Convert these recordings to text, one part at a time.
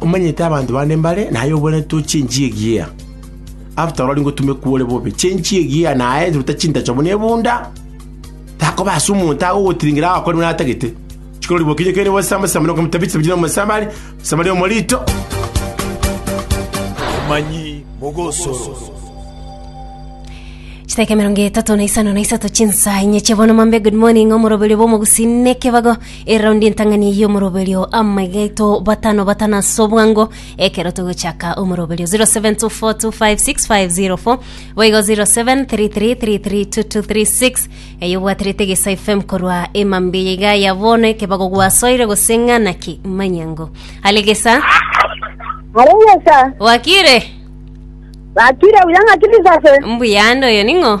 Omanyete abanto bande mbare naye obwenerete to chenchie egiya. After oro aringotumekwa ore bobe, chenchie egiya naye ruta chintacho buna ebunda, takoba ase omonto agogotiringera agakore buna atagete. Chikorori bokinye kere bose amasamba na okomotabisa biri nomosambi are, omosambi aria omorito. Amanyi mogosoro. Chidakika emerongo etato na isano na isato chinsa inye chiabono mambe good morning omoroberio bwa omogusii nekebago Eraundi entang'ani y'omoroberio amagaito batano batano ase obwango ekero togochaka omoroberio 0724256504 boigo 0733332236 eyo obwaterete gesa fm korwa emambia yaiga ya bono ekebago gwasoire gose ng'ana ki manyango ale gesa Areyesa, wakire bakire buya ng'aki bisase. mbuyande oyo ning'o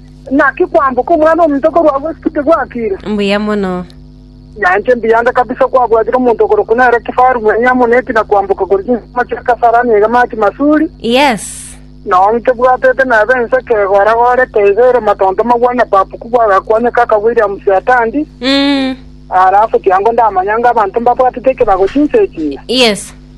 Naki kwamboka Omwana-o-monto korwa agwo ase tiguakiire? Mbuya mono. Nainche mbiyanga kabisa kwabwatire omonto okorokwa nere kifaru mwenye amo nebi na kwamboka korwa chinsemo chia Kasarani egamachi Masuri, Yes. nao nkebwatete nabo ense ekegora-gorete iga ere matonto magwa na babuku bw'agakwanyoka aka Williams Atandi, Mm. alafu tiango ndamanya ng'a abanto mbabwatete ekebago chinsa echi ng'a. Yes.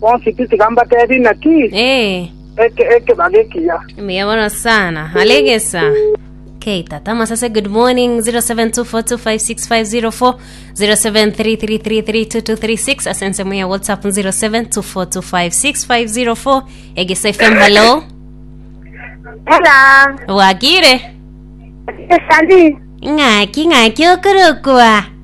Bonsi tiga mbatebi naki Ee, eke ekebaga ekiya. mbuya mono sana. Alegesa. Okay, tata masase good morning 0724256504 0733332236 asense muya whatsapp 0724256504 egesa fm hello Hello. bwakire Esali. ng'aki ng'aki okorokwa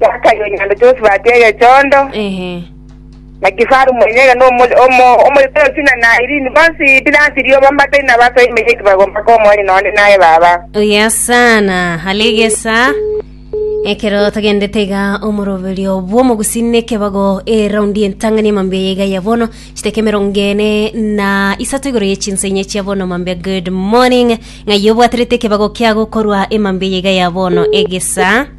Zakayo onye naende Josefu atia egechondo, Ehe. na kifaru mwenyene, na omo- omo- omoyotoroki na Nairini, bonsi Pilato rioba mbatari na baso emenyo eki bagomba komonya nonde naye baba. Oya sana alegesa ekero togendete iga omoroberio bw'omogusi nekebago eraundi entang'ani emambia yaiga ya bono chiteka emerongo ene na isato igoro ye chinsa inye chia bono mambia good morning ng'ai obwaterete ekebago kiago korwa emambia yaiga ya bono egesa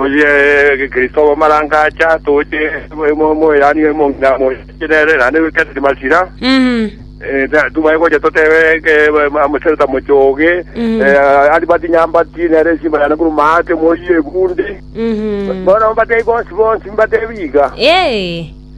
Oye Kristo bw'amarango acha toche moeranigwe monga moche nere naende goikereri masira. Tobwai gocha totebe amochenu tamoche oge, ari bati nyambati nere esimba yane korwa maate moyie egunde. Bono mbatebie bonsi bonsi mbatebie iga.